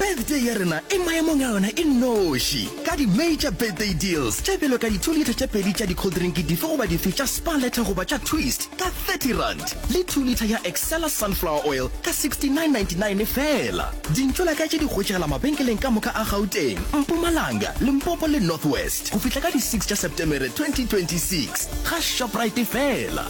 birthday ya rena e maemong a yona e noši ka di-major birthday deals tše bjalo ka di-two litre tše pedi tša di-coldrinki dife goba dife tša spa letter goba tša twist ka 30 rand le two litre ya excella sunflower oil ka 69.99 fela dintlo la ka tše di hwetšegela mabenkeleng ka moka a gauteng mpumalanga limpopo le north west go fihla ka di 6 tša septemere 2026 ga shoprite fela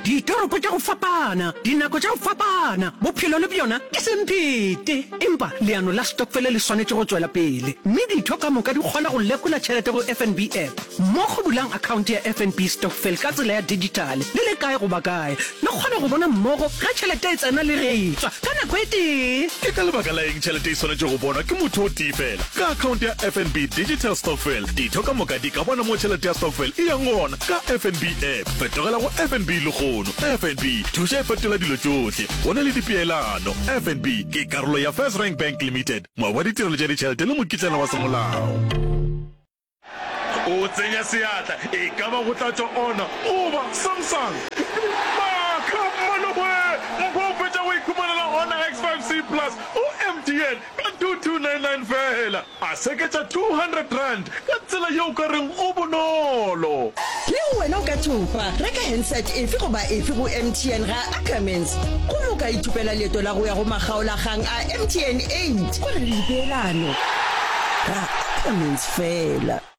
Ditoropo tša go fapana, dinako tša go fapana, bophelo le bjona ke semphete. Empa leano la stokfele le swanetše go tšwela pele, mme ditho ka moka di kgona go lekola tšhelete go FNB App. Mo go bulang akhaonte ya FNB Stokvel ka tsela ya dijithale, le le kae goba kae, le kgona go bona mmogo ge tšhelete e tsena le ge e tšwa ka nako e tee. Ke ka lebaka la eng tšhelete e swanetše go bonwa ke motho o tee feela? Ka akhaonte ya FNB Digital Stokvel, ditho ka moka di ka bona mo tšhelete ya stokvel e yang gona. Ka FNB app, fetogela go FNB lehono. FNB, thuša e fetola dilo tšohle. Go na le dipeelano. FNB ke karolo ya First Rank Bank Limited, moabi wa ditirelo tša ditšhelete le mokitlana wa semolao. O tsenya seatla, e ka ba go tla tšwa Honor goba Samsung. Maaka! Maloboe! Mpho o fetša go iphumanela Honor X5C Plus go MTN ka 2299 feela. A seketša R200 ka tsela yeo o ka reng go bonolo. Le go wena o ka thopa. Reka handset efe goba efe go MTN ga Ackermans gomme o ka ithopela leeto la go ya go makgaolakgang a MTN 8. Go na le dipeelano. Ra Ackermans feela.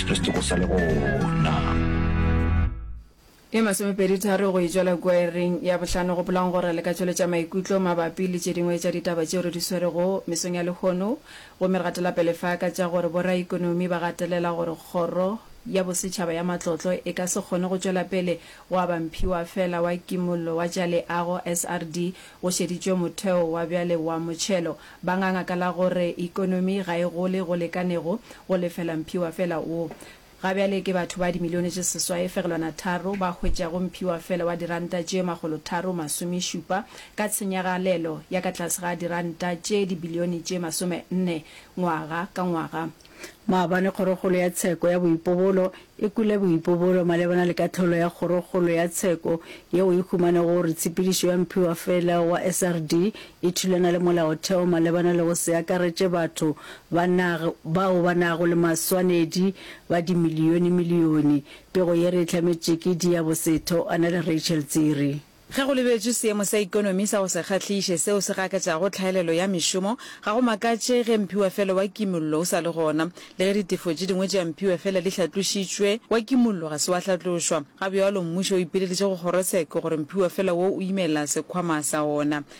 Re se tsogo sa le gona. Ye masomepeditharo go e tšwela kwearing ya bohlano go bolwang gore le ka tšweletša maikutlo mabapi le tše dingwe tša ditaba tšeo re di swerego mesong ya lehono. Gomme re gatela pele fa ka tša gore boraikonomi ba gatelela gore Kgoro ya Bosetšhaba ya Matlotlo e ka se kgone go tšwela pele go aba mphiwa feela wa Kimollo wa tša Leago, SRD, go šeditšwe motheo wa bjale wa motšhelo. Ba nganga ka la gore ekonomi ga e gole go lekanego go lefela mphiwa fela wo. Ga bjale ke batho ba dimilione tše seswae fegelwana tharo ba hwetšago mphiwa fela wa diranta tše makgolo tharo masome šupa ka tshenyagalelo ya ka tlase ga diranta tše dibilione tše masome nne ngwaga ka ngwaga. Maabane Kgorokgolo ya Tsheko ya Boipobolo e kwele boipobolo malebana le kahlolo ya Kgorokgolo ya Tsheko yeo e humanego gore tshepedišo ya mphiwafela wa SRD e thulana le molaotheo malebana le go se akaretše batho ba nag bao ba nago le maswanedi ba dimiliyonimiliyoni. Pego ye re e hlametše ke Diya Bosetho a na le Rachel Tsiri. Ge go lebetšwe seemo sa ikonomi sa go se kgahliše seo se gakatšago tlhaelelo ya mešomo, ga go makatše ge mphiwafelo wa kimollo o sa le gona. Le ge ditefo tše dingwe tša mphiwafela di hlatlošitšwe, wa kimollo ga se wa hlatlošwa. Ga bjalo, mmušo o ipileditše go kgorotsheko gore mphiwafela woo o imela sekhwama sa ona.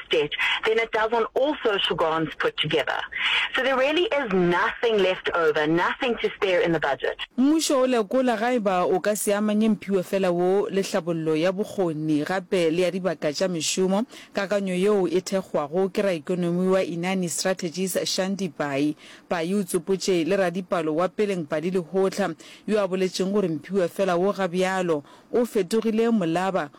direct debt then it does on all social grants put together. So there really is nothing left over, nothing to spare in the budget. Mmušo o lekola ga e ba o ka se amanye mphiwe fela wo le hlabollo ya bokgoni gape le ya dibaka tša mešomo. Kakanyo yeo e thekgwago ke raikonomi wa Inani Strategies Shandy Pai. Pai o tsopotše le radipalo wa Peleng Padi Lehohla yo a boletšeng gore mphiwe fela wo ga bjalo o fetogile molaba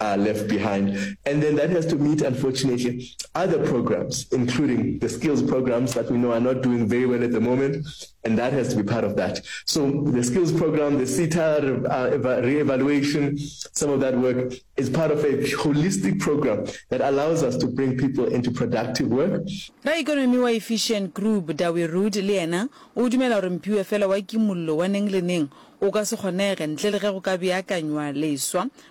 are left behind and then that has to meet unfortunately other programs including the skills programs that we know are not doing very well at the moment and that has to be part of that so the skills program the SETA uh, re-evaluation some of that work is part of a holistic program that allows us to bring people into productive work raikonomi wa efficient group dawe rood le yena o dumela gore mpiwe fela wa kimollo wa neng le neng o ka se kgonege ntle le ge go ka beakanywa leswa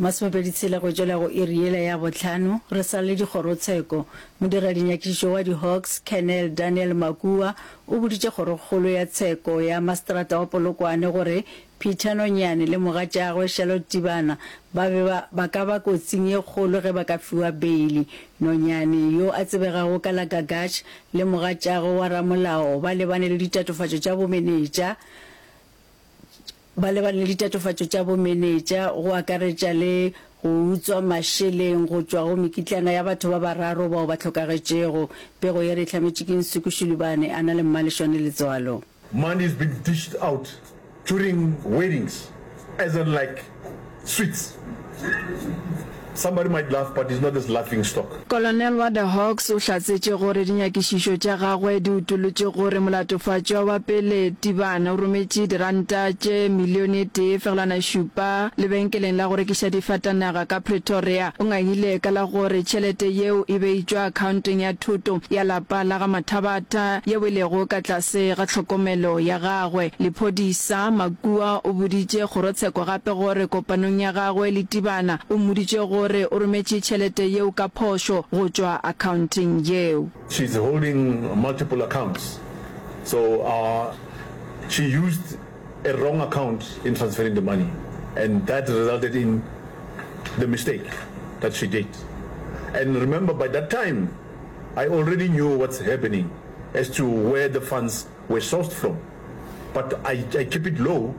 Masomepedi tshela go tšwela go iri yela ya bohlano, re sa le dikgorotsheko, modiralinyakišo wa di-Hawks, Colonel Daniel Makua, o boditše kgorokgolo ya tsheko ya maseterata wa Polokwane gore Peter Nonyane le mogatšagwe Charlotte Tibana ba be ba ba ka ba kotsing ye kgolo ge ba ka fiwa beili. Nonyane, yo a tsebegago ka la Gagash, le mogatšagwe wa ramolao ba lebane le ditatofatšo tša bomenetša, Ba lebane le ditatofatšo tša bomenetša, go akaretša le go utswa mašeleng go tšwa go mekitlana ya batho ba bararo bao ba hlokagetšego. Pego ye re e hlametše ke Nsuku Shulubane, a na le mmalešwane letswalo. Money is being dished out during weddings as in like. Sweets. Somebody might laugh but he's not this laughing stock. Kolonel wa The Hawks o hlatsetše gore dinyakišišo tša gagwe di utolotše gore molatofatšwa wa pele Tibane o rometše diranta tše milione e tee fegelwana šupa lebenkeleng la go rekiša difatanaga ka Pretoria. O ngangile ka la gore tšhelete yeo e be e tšwa akhaonteng ya thoto ya lapa la ga Mathabatha yeo e lego ka tlase ga tlhokomelo ya gagwe. Lephodisa, Kua o boditše kgorotsheko gape gore kopanong ya gagwe le Tibana o mmoditše gore o rometše tšhelete yeo ka phošo go tšwa akhaonteng yeo. She's holding multiple accounts so ur she used a wrong account in transferring the money and that resulted in the mistake that she did and remember by that time I already knew what's happening as to where the funds We're sourced from but I I keep it low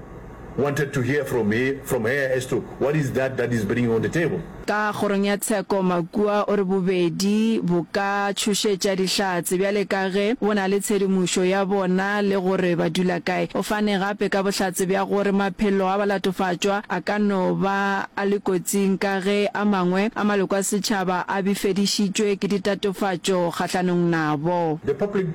wanted to hear from he from her as to what is that that is bringing on the table. Ka kgorong ya tsheko, Makua o re bobedi bo ka tšhošetša Dihlatse bjale ka ge bo na le tshedimošo ya bona le gore ba dula kae. O fane gape ka bohlatse bja gore maphelo a balatofatšwa a ka no ba a le kotsing ka ge a mangwe a maloko a setšhaba a bifedišitšwe ke ditatofatšo kgahlanong nabo. The public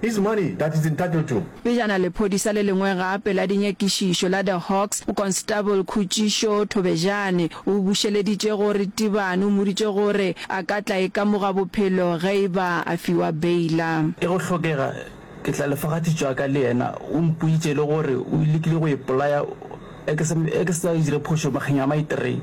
His money that he's entitled to. Pejana lephodisa le lengwe gape la dinyakišišo la The Hawks, Mokonstable Khutšišo Thobejane, o bušeleditše go Ritibane, o mmoditše gore a ka tla ikamoga bophelo ge e ba a fiwa beila. Ge go hlokega, ke tla lefa ga thitšo ya ka le yena. O mpoditše le gore o lekile go ipolaya ge ke sa dire phošo makgeng a maithree.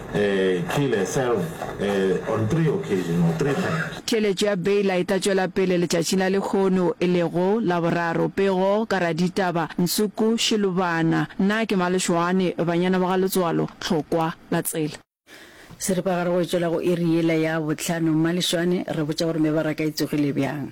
Theeletšo ya Baylor e tla tšwela pele letšatšing la lehono, e lego Laboraro. Pego ka raditaba, Nsuku Shilubana, Na ke Malešoane, Banyana ba ga Letswalo, Tlhokwa la tsela. Seripagare go e tšwela go iri yela ya bohlano. Malešoane, Re botša gore mebaraka e tsogile bjang?